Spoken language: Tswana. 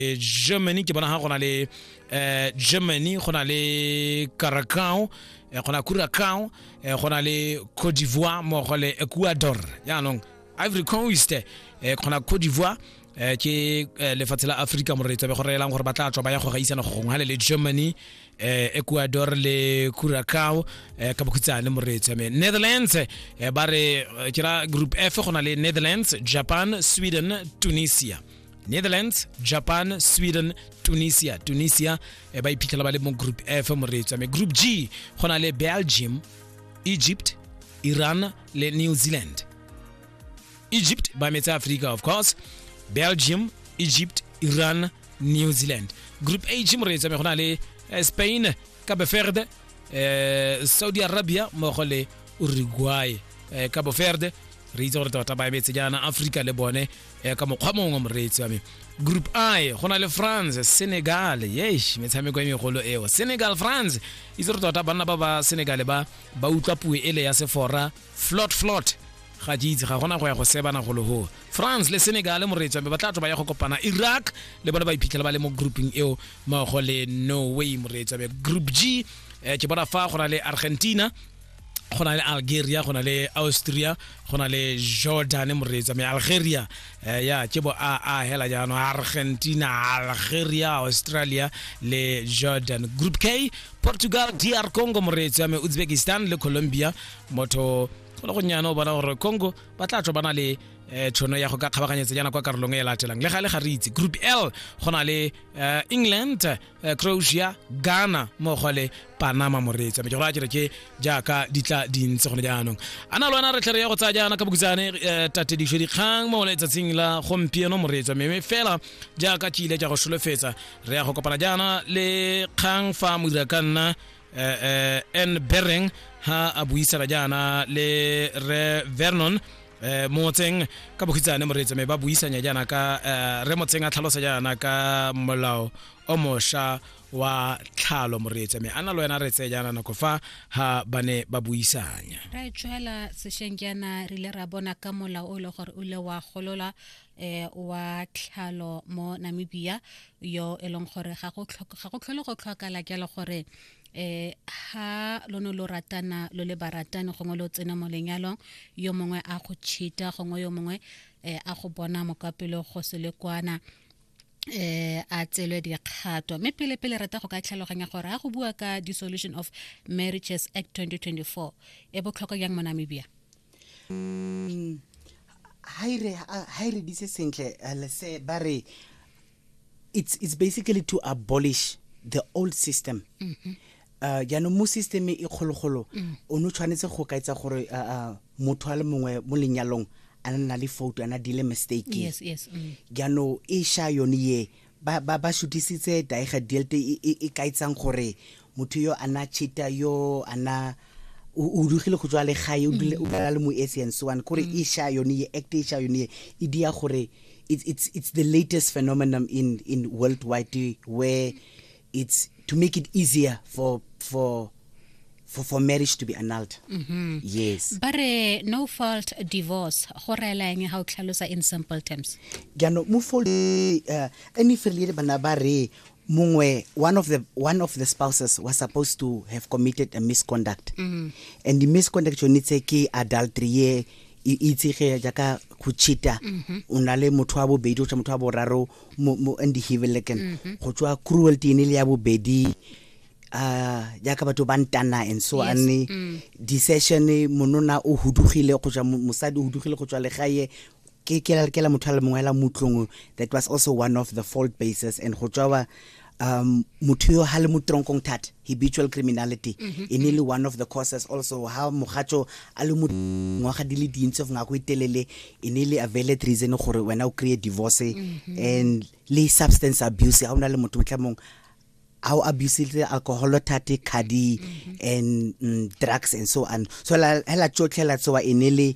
eh, germany ke bona ga go na le eh, germany go na le caracao eh, go na curacao eh, go na le cote d'ivoire mmogo le ecuador jaanong ivory coast eh, go na cote d'ivoire eh, ke eh, lefatshe la aforika moretso be go reelang gore ba tla tswa ba ya go gaisana go gongwe gale le germany eh, ecuador le curacao eh, ka bokhutshane moretso me netherlands eh, ba re eh, ke ra group f go na le netherlands japan sweden tunisia netherlands japan sweden tunisia tunisia e ba iphitlhela ba le mo group f moreetso ame group g go na le belgium egypt iran le new zealand egypt ba metse africa of course belgium egypt iran new zealand group h moreetso ame go na le eh, spain cape verde eh, saudi arabia mmogo le uruguay eh, cape verde re itse gore tota ba emetse jaana africa le bone eh, ka mokgwa mongwe wa moreetsi wa me group i go na le france senegal yesh metshameko e megolo eo senegal france itse re tota banna ba ba senegal ba ba utlwa puo ele ya sefora flot flot ga ke itse ga gona go ya go sebana go logo france le senegal moreetsi wa me ba tla tlo ba ya go kopana iraq le bone ba iphitlhela ba le mo grouping eo mmogo le norway moreetsi wa me group g eh, ke bona fa go na le argentina go na le algeria go na le austria go na le jordan moreetsa me algeria eh, ya ke bo a a hela jaanong argentina algeria australia le jordan group k portugal dr congo moreetsi wa me uzbekistan le colombia motho go le gonnyane o bona gore congo ba tla tlo ba na le eh, tšhono ya go ka kgabaganyetsa jaana kwa karolong e latelang le ga le ga re itse group l go na le eh, england eh, croatia ghana mmogo le panama moreetsa mejego a kere ke jaaka di tla dintse gone jaanong a na le wena re tlhe re ya go tsaya jaana ka bokutsane eh, tatedišo dikgang mo letsatsing la gompieno moreetsa meme fela jaaka ke ile ka go solofetsa re ya go kopana jaana le kgang fa modira ka nna eh, eh, n bereng ha a buisana jaana le re vernon eh, motseng ka bokhitsane moreetsa me ba buisanya jaana ka eh, re motseng a tlhalosa jaana ka molao o mosha wa tlhalo moreetsa mme ana lo wena re tseye jaana nako fa ha ba ne ba buisanya ra tswela sesheng jaana re ile ra bona ka mola o le gore o ile wa golola eh wa tlhalo mo Namibia yo e leng gore ga go ga go tlhole go tlhokala jalo gore eh ha lo no lo ratana lo le baratani gongwe lo tsena mo lenyalong yo mongwe a go cheata gongwe yo mongwe eh, a go bona mokapelo go se le kwana eh a tselwe dikgato mme pele pele rata go ka tlhaloganya gore a go bua ka dissolution of marriages act 2024 e botlhokwa jang mo namibia mm, ha e re dise sentle eh, lese ba re it's, it's basically to abolish the old system mm -hmm. uh, jaanong mo systeme e kgologolo mm. o ne o tshwanetse go ka etsa gore uh, uh, motho a le mongwe mo lenyalong a ne na le foto ana dile mistake yes, yes, mm. jaanong e sha yone ye ba, ba, ba shutisitse daega delte e, e, e kaetsang gore motho yo ana chita yo ana o dugile go tswa le gae o dula mm. le mo ese and so on kore mm. e sha yone ye act e sha yone ye e dia gore it's it's it's the latest phenomenon in in worldwide where it's to make it easier for for for, for marriage to be annulled mm -hmm. yes but uh, no fault divorce go rela eng ga o tlhalosa in simple terms jaanong mo fault uh, any failure bana ba re mongwe one of the one of the spouses was supposed to have committed a misconduct mm -hmm. and the misconduct yone tse ke adultery ye e itsege jaaka go cheata mm-hmm. o na le motho wa bobedi o tsa motho wa boraro mo mo andihibeleken mhm. go tswa cruelty ene le ya bobedi uh jaaka batho ba ntana and so yes. ane mm. decision monona o hudugile go tswa mosadi o hudugile go tswa legae ke ke la motho a le mongwe la mutlong that was also one of the fault bases and go tswa um motho yo ha le mo tronkong thata habitual criminality mm -hmm. e ne le one of the causes also ha mogatso a le mo ngwaga di le dintsi of ngako e telele e ne le availed reason gore wena o create divorce mm -hmm. and le substance abuse ha o na le motho motlhamong a o abusile alcohol thate khadi mm -hmm. and mm, drugs and so on so la hela tsotlhela tsoa e ne le